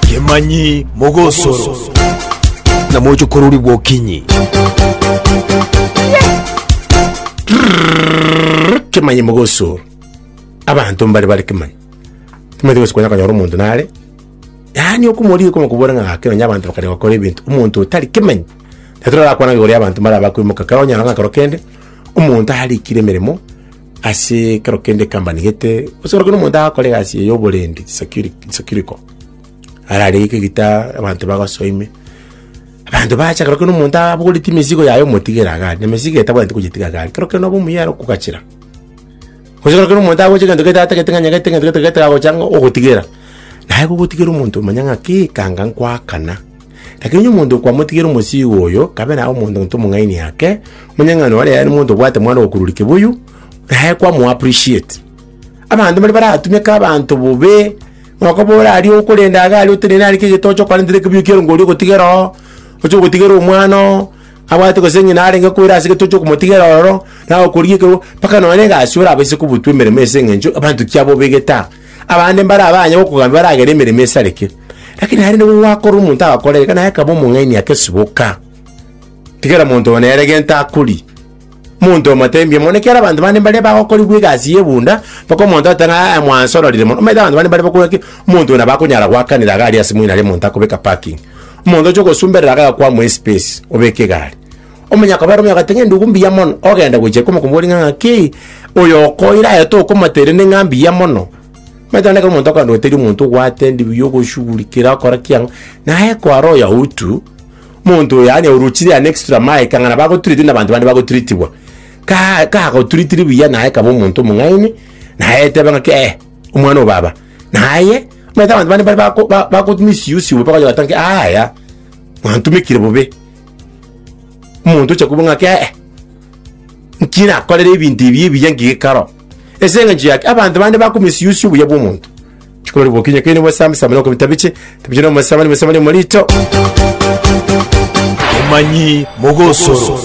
Kemanyi mogosoro. Na moche koruri gwokinyi. Kemanyi mogosoro. Abanto mbare bare kemanyi. Timanyete gose konya konyora omonto nare. Yaani okomori koma kobora ng'a gake nonya abanto bakare gokora ebinto. Omonto otari kemanyi. Natorara kwana igoro y'abanto mbare abakoimoka. Kero onyora ng'a kero kende omonto arikire emeremo. Ase ekero kende ekambani gete, gose korokio na omonto agakora egasi eye y'oborendi, securi- securical, ararenge gita abanto bagosoa ime, abanto bacha korokio na omonto abogoretie emesigo yaye omotigere iga aria, na emesigo etabwenereti kogetiga iga aria, kero kende nobe omuya ere okogachera. Gose korokio na omonto agocha egento gete atagete ng'a nyagete egento gete gete agocha ng'a ogotigera, naye gogotigera omonto omanye ng'a kei ekanga nkoakana. Lakini onye omonto kwamotigera omosiigo oyo, kabe naye omonto ntwe omong'aini ake, monyang'ani ore yaye nomonto obwate mwana ogokururi kibuyu, naye kwamoa appreciate. Abanto mbari baratumeke abanto bobe, nokobora aria okorenda iga aria otenene aria kera egento oche okarentera ekebuyu kiaye ngori ogotigera oo, oche ogotigera omwana oo, abwate gose ng'ina arenge koira ase gete oche okomotigera ororo, naye okorigia ekerogo, mpaka nonye na egasi orabaise kobutwa emeremo ase eng'encho abanto kiabobegete aa. Abande mbare abanye gokogambia baragere emeremo esareke, lakini aye nigo gwakora omonto agakora eye, naye akaba omong'aini ake, Siboka, tigera monto oo nere gento akori. Monto omo tembia mono, ekiagera abanto bande mbaria bagokorigwa egasi y'ebunda, mpaka omonto agoteba ng'a "Aa, mwansa ororire mono. Omanyete abanto bande mbare bakobua ng'a ki, omonto oyo nabo akonyara goakanera iga aria ase moino aria monto akobeka parking. Omonto oche ogosumberera iga agakwamwa espace, obeke iga aria. Omonyaka oberomia agoteba ng'a endugu mbuya mono, ogenda gochia komokoboria ng'a ng'aki oyo okoira aye tokomate erende ng'a mbuya mono. Omanyete onde ekero omonto okogenda gotebi omonto obwate ndibuya ogoshugurikera okora ki ang'o, naye kware oyo outw, monto oyo yaani orochire yaani extra mile ekang'ana bagotreatinwa nabanto bande bagotreatiwa, ka kagotreatiri buya naye kaba omonto omong'aini, naye eteba ng'aki eh, omwana o baba. Naye, omanyete abanto bande mbare bako ba bako misuse bobe bakonyora goteba ng'aki aaya, mwantumekire bobe. Omonto ocha kobua ng'ake ee, nki nakorere ebinto ebi ebiya nki gekaro? Ase eng'encho yaki abanto bande bako misuse obuya bwa omonto. Chikorori bokinya keri nibwe same same noko bitabiche, tabiche no mosama ni mosama ni morito. Omanyi mogosoro.